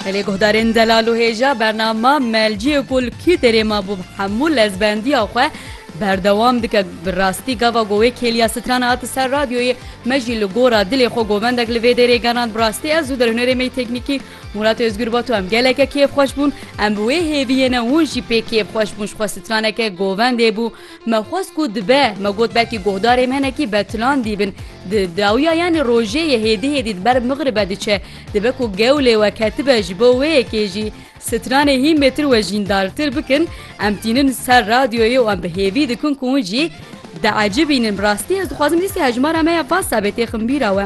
Gelê guhdarên zelal û hêja bernama Melciyê ku li Kîterê mabû bi hemû lezbendiya xwe berdewam dike. Bi rastî gava ku wê kêliya strana hate ser radyoyê me jî li gora dilê xwe govendek li vê dêrê genand. Bi rastî ez û derhunerê me yê teknîkî Murat Ozgur Batu em geleke kêfxweş bûn. Em bi wê hêviyê ne hûn jî pê kêfxweş bûn. Ji xwe straneke govendê bû. Me xwest ku dibe, me got belkî guhdarê me hinekî betilan dîbin. Di dawiya yanî rojê ye hêdî hêdî di ber Migribê diçe. Dibe ku gew lê we ketibe ji bo wê yekê jî stranê hîn bêtir wejîndartir bikin. Em tînin ser radyoyê û em bi hêvî dikin ku hûn jî diecibînin. Bi rastî ez dixwazim dîsê hejmara me ya Whatsappê têxin bîra we.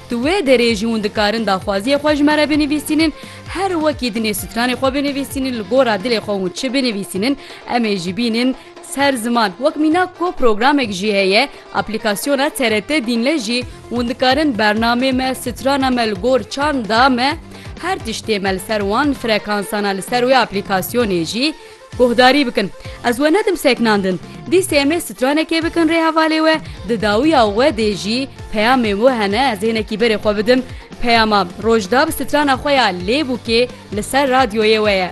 Di wê derê jî hûn dikarin daxwaziyê xwe ji me re binivîsînin, her wekî dinê stranê xwe binivîsînin, li gora dilê xwe hûn çi binivîsînin em ê jî bînin ser ziman. Wek mînak ku programek jî heye, aplîkasyona TRT Dînle jî hûn dikarin bernamê me, strana me li gor çanda me her tiştê me li ser wan frekansana li ser wê aplîkasyonê jî Guhdarî bikin. Ez we nedim seknandin. Dîsê em ê stranekê bikin rê hevalê we, di dawiya we dê jî peyamên we hene ez hênekî berê xwe bidim. Peyama Rojdab strana xwe ya Lêbûkê li ser radyoyê we ye.